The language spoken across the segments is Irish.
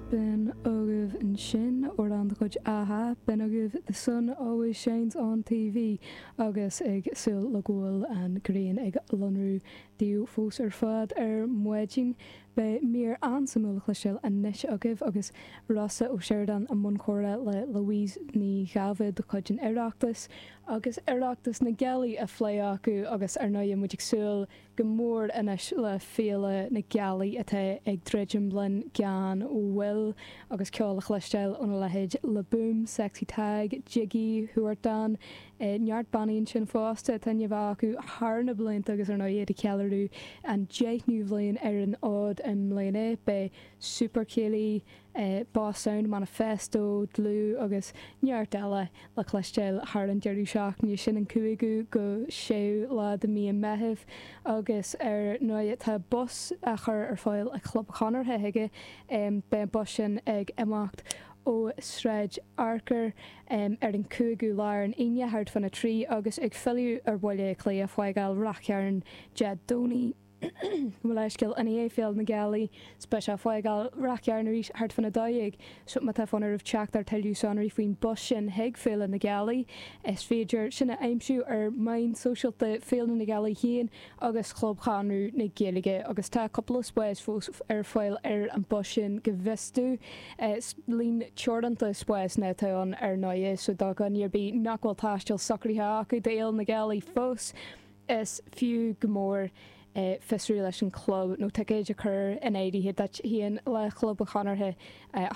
B'in agaibh ansin amhrán de chuid a-ha, b'in agaibh The Sun Always Shines On TV agus ag súil le go bhfuil an ghrian ag lonrú daoibh fós ar fad ar maidin, beidh mír an-suimiúil le cloisteáil anois agaibh agus Rossa Ó Sioradáin i mbun comhrá le Louise Ní Dháibhéid de chuid an Oireachtais. Agus Oireachtas na Gealaí á phlé acu agus, ar ndóigh, muid ag súil go mór anois le Féile na Gealaí atá ag druidim linn gan mhoill agus ceol a chloisteáil óna leithéid Le Boom, Sexy Tadhg, Jiggy, Huartan, neart bannaí ansin fosta atá inniu acu thar na blianta agus ar ndóigh iad ag ceiliúradh an deichniú bhliain ar an fhód i mbliana, beidh Super Céilí, Boss Sound Manifesto, Dlúth agus neart eile le cloisteáil thar an deireadh seachtaine sin, an 5ú go 6ú lá de mí an Mheithimh, agus ar ndóigh tá bus á chur ar fáil ag Club an Chonartha chuige, beidh an bus sin ag imeacht ó Sráid Fhearchair ar an 5ú lá, ar an Aoine, thart fán 3, agus ag filleadh ar Bhaile Átha Cliath ag fágáil Ráth Chairn Dé Domhnaigh. Mo leithscéal, i ndiaidh Féile na Gealaí beidh sé ag fágáil Ráth Chairn arís thart fán a dó dhéag. So má tá fonn oraibh teacht ar tuilleadh sonraí faoin bus sin chuig Féile na Gealaí. Is féidir sin a aimsiú ar mheáin sóisialta Féile na Gealaí féin agus Chlub Chonradh na Gaeilge agus tá cúpla spás fós ar fáil ar an bus sin go bhfios dom, líon teoranta spásanna atá ann ar ndóigh so do dhuine ar bith nach bhfuil taisteal socraithe acu d'Fhéile na Gealaí fós Is fiú go mór é fiosrú leis an chlub nó ticéid a chur in áirithe duit féin le Club an Chonartha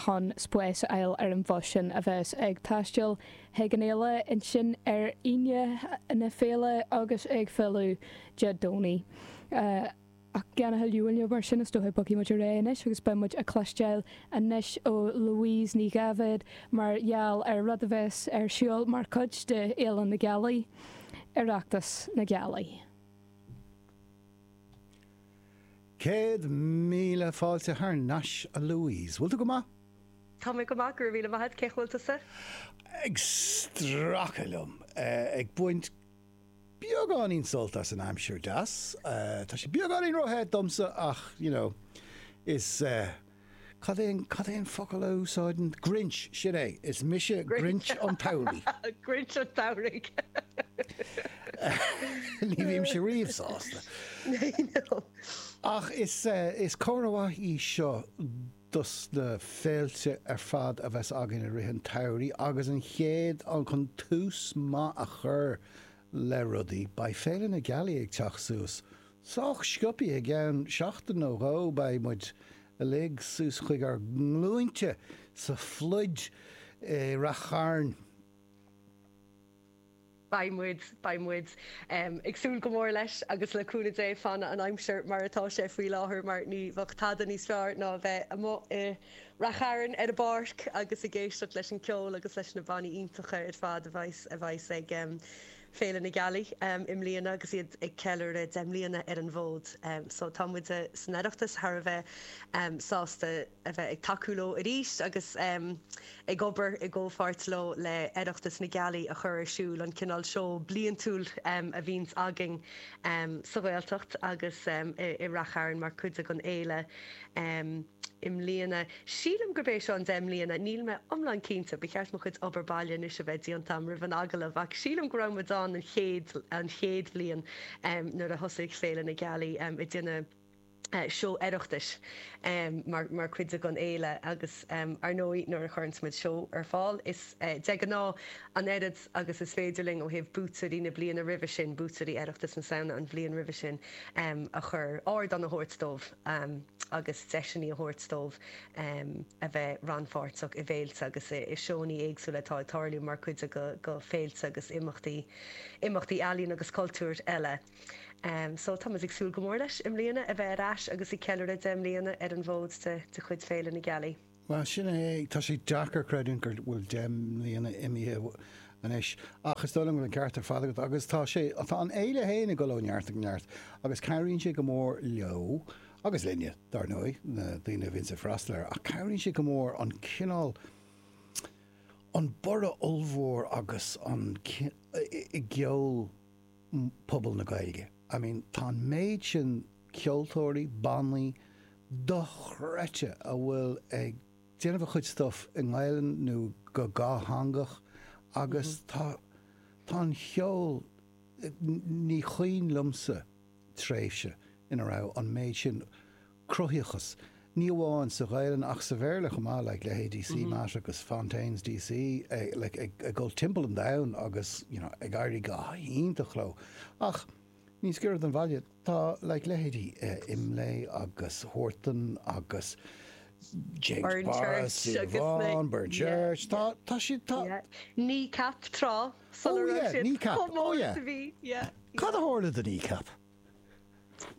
chun spás a fháil ar an bhus sin a bheas ag taisteal chuig an fhéile ansin ar Aoine na Féile agus ag filleadh Dé Domhnaigh. Ach gan a thuilleadh moille mar sin, is dócha, bogfaidh muid ar aghaidh anois agus beidh muid ag cloisteáil anois ó Louise Ní Dháibhéid mar gheall ar rud a bheas ar siúl mar chuid de Fhéile na Gealaí, Oireachtas na Gealaí. Céad míle fáilte thar nais, a Louise. Bhfuil tú go maith? Tá mé go maith, go raibh míle maith agat. Cén chaoi a bhfuil tusa? Ag stracadh liom, ag baint. Beagáinín sult as an aimsir deas. Tá sé beagáinín ró-the domsa ach you know is eh cad é an cad é an focal a úsáideann Grinch sin é is mise Grinch an tSamhraidh. Grinch an tSamhraidh. Ní bhímse riamh sásta. I know. Ach is eh is comhartha mhaith í seo. dos na féilte ar fad a bheas againn i rith an tsamhraidh agus an chéad cheann chun tús maith a chur le rudaí, beidh Féile na Gealaí ag teacht suas. Sách sciopaidh, i gceann seachtain nó dhó beidh muid uilig suas chuig ár nglúinte sa phluid i Ráth Chairn. Beidh muid, beidh muid. Ag súil go mór leis agus le cúnamh Dé fanfaidh an aimsir mar atá sé faoi láthair mar ní bheadh tada níos fearr ná a bheith amuigh i Ráth Chairn ar an bpáirc agus ag éisteacht leis an ceol agus leis na bannaí iontacha ar fad a bheidh, a bheas ag Féile na Gealaí i mbliana agus iad ag ceiliúradh deich mbliana ar an bhfód. So tá muid san Oireachtas thar a bheith sásta. a bheith ag tacú leo arís agus ag obair i gcomhpháirt leo le Oireachtas na Gealaí a chur ar siúl, an cineál seó bliantúil a bhíonns againn sa Ghaeltacht agus i Ráth Chairn mar chuid den fhéile i mbliana. Sílim gurb é seo an deich mbliana, níl mé iomlán cinnte, ba cheart mo chuid obair baile anois a bheith déanta agam roimh an agallamh, ach sílim go raibh muid ann an chéad bhliain nuair a thosaigh Féile na Gealaí ag déanamh seó Oireachtais mar chuid den fhéile agus, ar ndóigh, nuair a chuireanns muid seó ar fáil, is de ghnáth an oiread agus is féidir linn ó thaobh buaiteoirí na bliana roimhe sin, buaiteoirí Oireachtas na Samhna an bhliain roimhe sin, a chur, ardán a thabhairt dóibh agus deiseanna a thabhairt dóibh a bheith rannpháirteach i bhféilte agus i seónna éagsúla atá ag tarlú mar chuid de féilte agus imeachtaí ealaíon agus cultúir eile. So tá muid ag súil go mór leis i mbliana a bheith ar ais agus ag ceiliúradh deich mbliana ar an bhfód de chuid Féile na Gealaí. Bhuel, sin é, tá sé deacair creidiúint go bhfuil deich mbliana imithe anois ach is dóigh liom go bhfuil an ceart ar fad agat agus tá sé, tá an fhéile féin ag dul ó neart go neart agus cabhraíonn sé go mór leo, agus linne, dar ndóigh, na daoine a bhíonns ag freastal air, ach cabhraíonn sé go mór an cineál, an borradh ollmhór agus an, i gceol pobal na Gaeilge. I mean tá an méid sin ceoltóirí, bannaí dochreidte a bhfuil ag déanamh a chuid stuff i nGaelainn nó go dhátheangach agus tá tá an cheol ní chuimhin liomsa tréimhse ina raibh an méid sin cruthaitheachas, ní amháin sa Ghaelainn ach sa Bhéarla chomh maith, like leithéidí CMAT agus Fontaines DC, like ag ag dul timpeall an domhain agus you know ag éirí go hiontach leo. Ach níos giorra don bhaile, tá like leithéidí eh Imlé agus Huartan agus James Burn Boris, Church agus na Yvonne, Burnchurch, yeah, tá yeah tá siad tá yeah Kneecap tráth sula Oh raibh yeah, siad Kneecap, chomh oh mór is yeah. a bhí yeah Cad a yeah. tharla do Kneecap?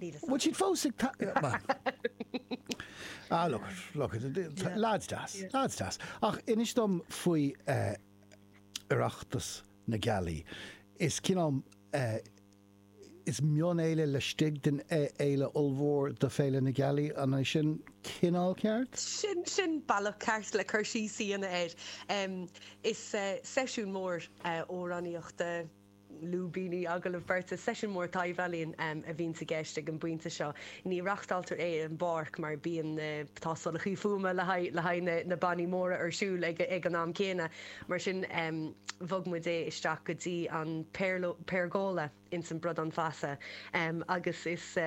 Bhfuil siad fós ag ta- bhuel. Ah, look at, look at, Yeah. lads deas, Yeah. lads deas. Ach inis dom faoi eh, Oireachtas na Gealaí. Is cineál, eh, is mion-fhéile laistigh den fhé- fhéile ollmhór de Féile na Gealaí, an é sin cineál ceart? Sin, sin bealach ceart le cur síos a dhéanamh air. Em, is eh, seisiún mór eh, amhránaíochta. lúibíní agallamh beirte, Seisiún mór taibhealaíon a bhíonns i gceist ag an bpointe seo. Ní reachtáiltear é ar an bpáirc mar bíonn na tástálacha fuaime le haghaidh na bannaí móra ar siúl ag an am céanna. Mar sin bhog muid é isteach go dtí an Pérgola ins an mBradán Feasa agus is.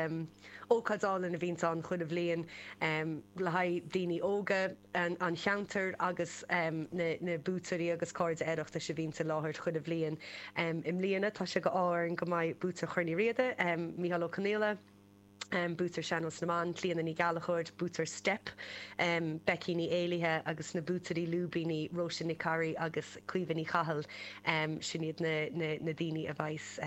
Ócáid álainn a bhíonns ann chuile bhliain le haghaidh daoine óga an cheantair agus na buaiteoirí agus cairde Oireachtais a bhíonns i láthair chuile bhliain. I mbliana tá sé d'ádh orainn go mbeidh buaiteoir Chorn Uí Riada, Micheál Ó Confhaola, buaiteoir Sean-Nós na mBan, Clíona Ní Ghallachóir, buaiteoir Steip, Becky Ní Éallaithe agus na buaiteoirí lúibíní Róise Nic Corraidh agus Caoimhe Ní Chathail, sin iad na daoine a bheas.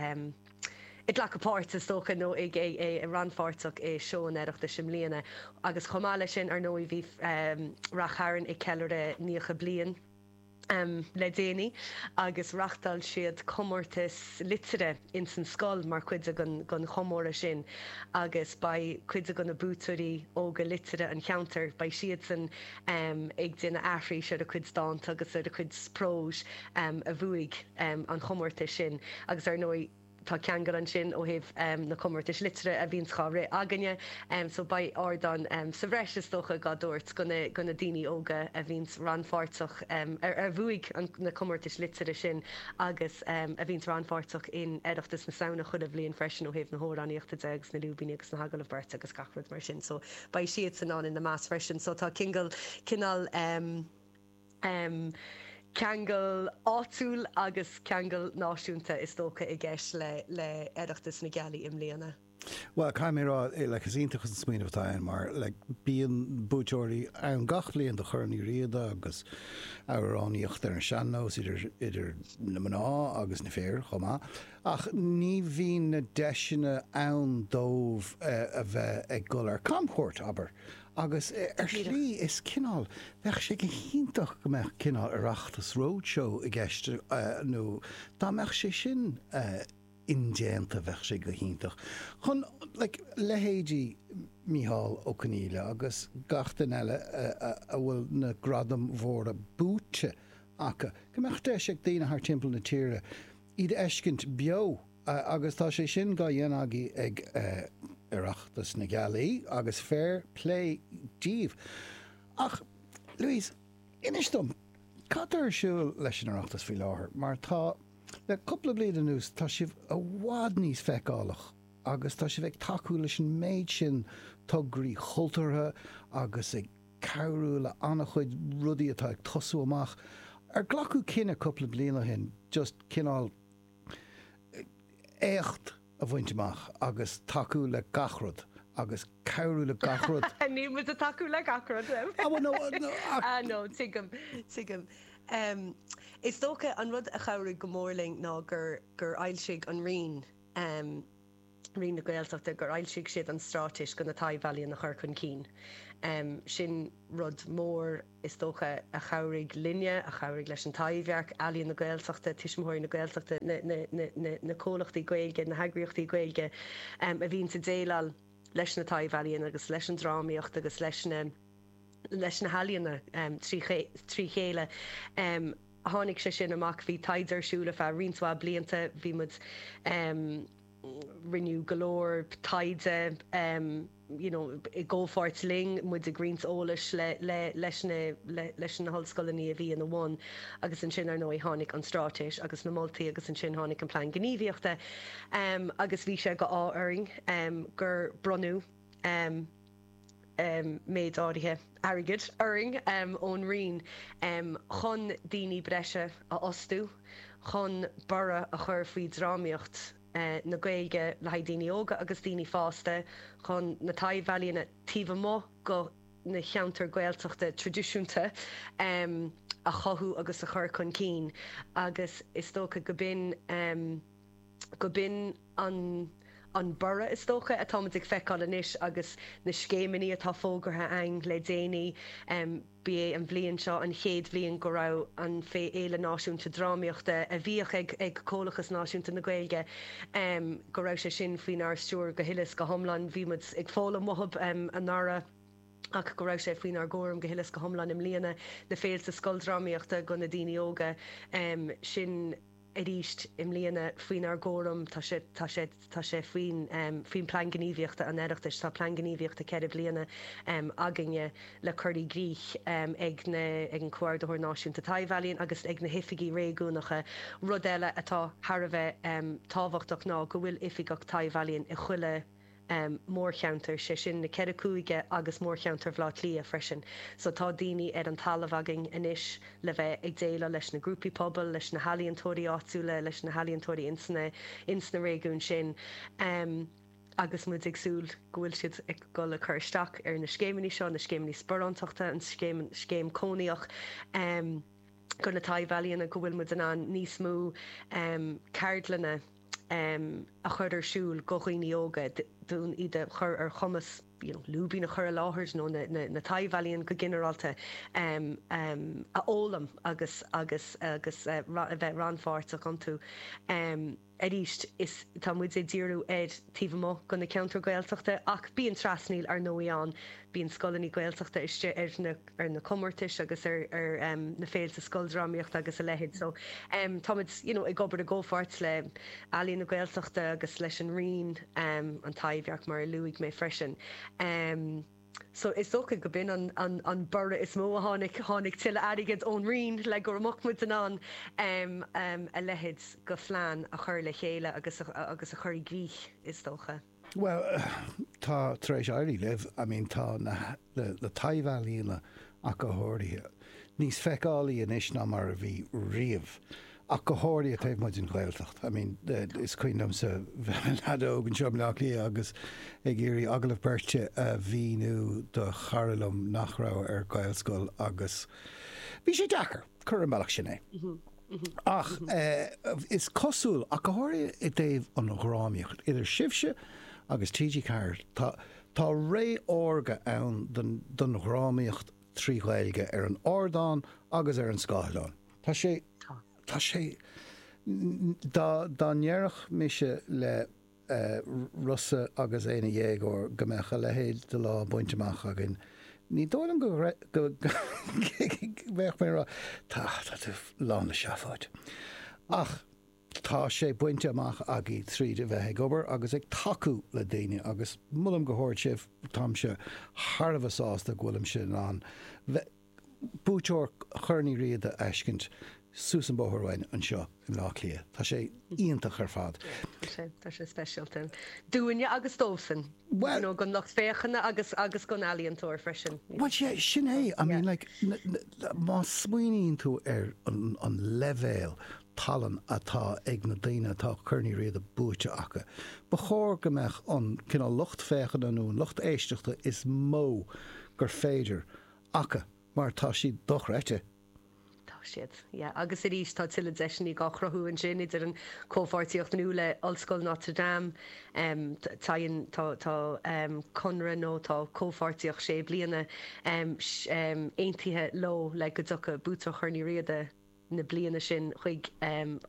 ag glacadh páirt, is dócha, nó rannpháirteach i Seó an Oireachtais i mbliana, agus chomh maith leis sin, ar ndóigh, bhí Rath Chairn ag ceiliúradh 90 bliain le déanaí agus reáchtáil siad comórtas liteartha ins an scoil mar chuid den chomóradh sin agus beidh cuid de na buaiteoirí óga liteartha an cheantair, beidh siadsan ag déanamh aithris ar a gcuid dánta agus ar a gcuid próis a bhuaigh an comórtas sin agus ar ndóigh tá ceangal ansin ó thaobh na comórtais liteartha a bhíonns dhá rith againne so beidh ardán sa bhreis is dócha dhá thabhairt do na daoine óga a bhíonns rannpháirteach a bhuaigh na comórtais liteartha sin agus a bhíonns rannpháirteach in Oireachtas na Samhna chuile bhliain freisin ó thaobh na hamhránaíochta de agus na lúibíní agus na hagallaimh beirte agus gach rud mar sin so beidh siadsan ann ina measc freisin so tá ceangal cineál. ceangal áitiúil agus ceangal náisiúnta is dócha i gceist le Oireachtas na Gealaí i mbliana. Bhuel, caithfidh mé a rá, like, is iontach an smaoineamh atá ann mar, like, bíonn buaiteoirí ann gach bliain do Chorn Uí Riada agus amhránaíocht ar an sean-nós idir, idir na mná agus na fir chomh maith ach ní bhíonn na deiseanna ann dóibh a bheith ag dul ar camchuairt, abair. Agus ar shlí, is cineál, bheadh sé go hiontach go mbeadh cineál Oireachtas Roadshow i gceist nó dá mbeadh sé sin indéanta, bheadh sé go hiontach chun like leithéidí Micheál Ó Confhaola agus gach duine eile a bhfuil na gradaim mhóra buaite acu, go mbeadh deis ag daoine thart timpeall na tíre iad a fheiscint beo agus tá sé sin dhá dhéanamh agaibh ag Oireachtas na Gaeilge agus fair plé díbh. Ach, Louise, inis dom, cad tá ar siúl leis an Oireachtas faoi láthair mar tá, le cúpla bliain anuas, tá sibh i bhfad níos feiceálach agus tá sibh ag tacú leis an méid sin tograí chultúrtha agus ag. cabhrú le an-chuid rudaí atá ag tosú amach, ar glacadh cinneadh cúpla bliain ó shin just cineál éacht a bhaint amach agus tacú le gach rud agus cabhrú le gach rud. Níl muid a tacú le gach rud em. Ah, well, no, uh, no, ach- Ah, no, tigim, tigim. Em, is dócha an rud a chabhraigh go mór linn ná gur, gur fhoilsigh an Roinn, em, Roinn na Gaeltachta gur fhoilsigh siad an straitéis do na taibh-ealaíon a chur chun cinn. Sin rud mór, is dócha, a chabhraigh linne, a chabhraigh leis an Taibhdhearc, Ealaíon na Gaeltachta, Tuismitheoirí na Gaeltachta, na comhlachtaí Gaeilge, na heagraíochtaí Gaeilge a bhíonns a déileáil leis na taibh-ealaíon agus leis an drámaíocht agus leis na healaíona trí chéile. tháinig sé sin amach. Bhí taighde ar siúl ar feadh roinnt mhaith blianta. Bhí muid, em, rinneadh go leor taighde, em, you know, i gcomhpháirt linn, muid ag roinnt eolais le, le, leis na, le, leis na hollscoileanna a bhí ina bhun agus ansin, ar ndóigh, tháinig an straitéis agus na moltaí agus ansin tháinig an plean gníomhaíochta, em, agus bhí sé d'ádh orainn, em, gur bronnadh, em, méid áirithe airgid orainn ón Roinn chun daoine breise a fhostú chun borradh a chur faoi dhrámaíocht na Gaeilge le haghaidh daoine óga agus daoine fásta, chun na taibhealaíona taobh amuigh de na ceantair Ghaeltachta traidisiúnta a chothú agus a chur chun cinn agus is dócha go b'in. go b'in an an borradh, is dócha, atáimid ag feiceáil anois agus na scéimeanna atá fógartha againn le déanaí. Ba é an bhliain seo an chéad bhliain go raibh an fé Fhéile Náisiúnta Drámaíochta a bhíodh ag ag Comhlachas Náisiúnta na Gaeilge, go raibh sé sin faoinár stiúir go huile is go hiomlán. Bhí muid ag foghlaim uathub anuraidh ach go raibh sé faoinár gcúram go huile is go hiomlán i mbliana, na féilte scoldrámaíochta do na daoine óga sin. arís i mbliana faoinár gcúram. Tá sé, tá sé, tá sé faoin, faoin Plean Gníomhaíochta an Oireachtais. Tá Plean Gníomhaíochta ceithre bliana againne le cur i gcrích ag na, ag an Comhordaitheoir Náisiúnta Taibh-ealaíon agus ag na hOifigí Réigiúnacha. Rud eile atá thar a bheith tábhachtach ná go bhfuil Oifigeach Taibh-ealaíon i chuile. mórcheantar, sé sin na ceithre cúige agus mórcheantar Bhleá Cliath freisin. So tá daoine ar an talamh againn anois le bheith ag déileáil leis na grúpaí pobail, leis na healaíontóirí áitiúla, leis na healaíontóirí ins na réigiúin sin agus muid ag súil go bhfuil siad ag dul ag cur isteach ar na scéimeanna seo, na scéimeanna sparántachta, an scéim cónaitheach go na taibh-ealaíona go bhfuil muid in ann níos mó ceardlanna. a chur ar siúl go dhaoine óga, d'fhonn iad a chur ar chumas you know lúibín a chur i láthair nó na taibh-ealaíona go ginearálta a fhoghlaim agus agus agus a bheith rannpháirteach iontu. Arís, is tá muid ag díriú ar taobh amuigh go na ceantair Gaeltachta ach bíonn trasnaíl, ar ndóigh, ann. Bíonn scoileanna Gaeltachta istigh ar na. ar na comórtais agus ar na féilte scoildrámaíochta agus a leithéid. So, táimid, you know, ag obair i gcomhpháirt le Ealaín na Gaeltachta agus leis an Roinn, an Taibhdhearc, mar a luaigh mé freisin. So, is dócha go b'in an borradh is mó a tháinig, tháinig tuilleadh airgid ón Roinn le go raibh muid in ann a leithéid go phlean a chur le chéile agus a chur i gcrích, is dócha. Bhuel, tá tar éis éirí libh. I mean, tá na, na taibh-ealaíona ach go háirithe, níos feiceálaí anois ná mar a bhí riamh. Ach go háirithe taobh amuigh den Ghaeltacht. I mean, is cuimhin liomsa bheith i mo leaid óg anseo i mBleá Cliath agus ag iarraidh agallamh beirte a mhíniú do chara liom nach raibh ar Ghaelscoil agus bhí sé deacair. Cuir ar an mbealach sin é. Ach is cosúil, ach go háirithe i dtaobh an drámaíocht, idir sibhse agus TG4, tá ré órga ann don drámaíocht trí Ghaeilge ar an ardán agus ar an scáileán. Tá sé, tá sé, dá ndéarfadh mise le. Rossa agus é ina dhéagóir go mbeadh a leithéid de lá bainte amach againn. Ní dóigh liom go mbeadh, mé a rá, tá tú lán le seafóid. Ach tá sé bainte amach againn tríd a bheith ag obair agus ag tacú le daoine agus molaim go hard sibh, táimse thar a bheith sásta go bhfuilimse in ann bheith buaiteoir Chorn Uí Riada a fheiscint suas an bóthar uainn anseo i mBleá Cliath. Tá sé iontach ar fad. Tá sé speisialta. Dúinne agus dóibhsean Well nó don lucht féachana agus agus don ealaíontóir freisin. Well sé sin é I mean like má smaoiníonn tú ar an leibhéal talann atá ag na daoine atá Corn Uí Riada buaite acu. Ba chóir go mbeadh an cineál lucht féachana nó an lucht éisteachta is mó gur féidir aca mar tá siad dochreidte. Tá siad, yeah. Agus arís tá tuilleadh deiseanna dhá chruthú ansin idir an comhpháirtíocht nua le Ollscoil Notre Dame, téann, tá, tá conradh nó tá comhpháirtíocht sé bliana aontaithe leo le go dtiocfadh buaiteoir Chorn Uí Riada, na bliana sin chuig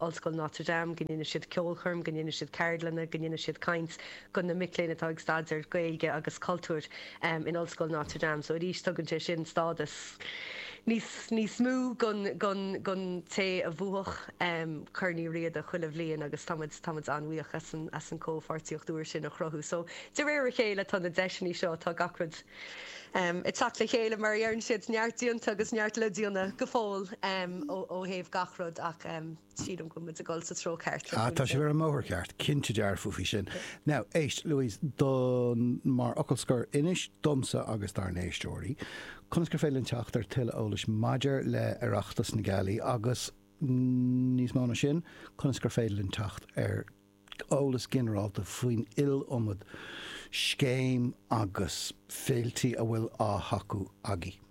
Ollscoil Notre Dame, go ndéanadh siad ceolchoirm, go ndéanadh siad ceardlanna, go ndéanadh siad caint go na mic léinn atá ag staidéar Gaeilge agus cultúir in Ollscoil Notre Dame. So arís tugann sé sin stádas níos níos mó don don don té a bhuafadh Corn Uí Riada chuile bhliain agus tá muid tá muid an-bhuíoch as an as an comhpháirtíocht úr sin a chruthú. So de réir a chéile tá na deiseanna seo, tá gach rud, ag teacht le chéile mar a dheireann siad, neart déanta agus neart le déanamh go fóill ó thaobh gach rud ach sílim go bhfuil muid ag dul sa treo ceart. Ah tá sibh ar an mbóthar ceart, cinnte dearfa faoi sin. Now éist, Louise, don, mar fhocal scoir, inis domsa agus dár n-éisteoirí conas gur féidir linn teacht ar tuilleadh eolais maidir le Oireachtas na Gealaí agus, níos mó ná sin, conas gur féidir linn teacht ar eolas ginearálta faoin iliomad scéim agus féiltí a bhfuil á thacú agaibh.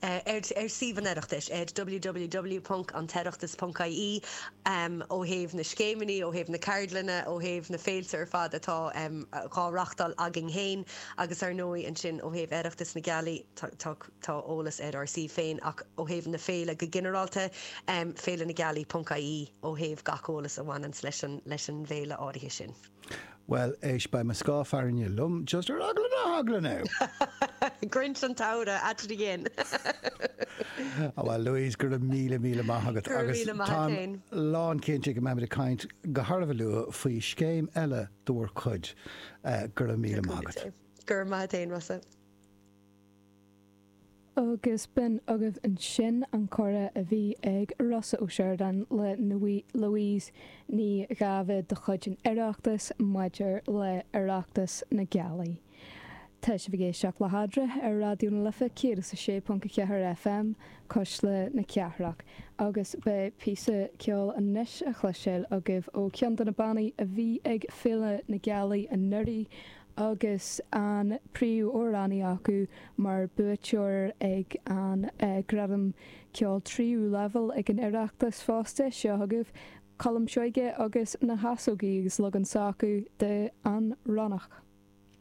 ar suíomh an Oireachtais, www.antoireachtas.ie, ó thaobh na scéimeanna, ó thaobh na ceardlanna, ó thaobh na féilte ar fad atá dhá reáchtáil againn féin agus, ar ndóigh, ansin ó thaobh Oireachtas na Gealaí. Tá. Tá eolas ar ár suíomh féin ach ó thaobh na féile go ginearálta, féilenagealaí ponc ie ó thaobh gach eolas a bhaineanns leis an bhféile áirithe sin. Bhuel, éist, beidh mo scáth fearthainne liom, just ar eagla na heagla, now! Grinch an tSamhraidh at it again! Á, bhuel, Louise, go raibh míle, míle maith agat. Go raibh míle maith agat féin. Agus táim lán cinnte go mbeimid ag caint go han-luath faoi scéim eile de bhur gcuid. Go raibh míle maith agat. Go raibh maith a't féin, Rossa. Agus b'in agaibh ansin an comhrá a bhí ag Rossa Ó Sioradáin le Louise Ní Dháibhéid de chuid an Oireachtais maidir le Oireachtas na Gealaí. Tá sibh ag éisteacht le hAdradh ar Raidió na Life 106.4 FM, Cuisle na Cathrach, agus beidh píosa ceoil anois a chloisteáil agaibh ó cheann de na bannaí a bhí ag Féile na Gealaí anuraidh, agus an príomhamhránaí acu mar buaiteoir ag an Gradam Ceoil Tríú Leibhéal ag an Oireachtas fosta. Seo chugaibh Colm Seoige agus na hEasógaí agus leagan s'acu de 'An Ronnach'.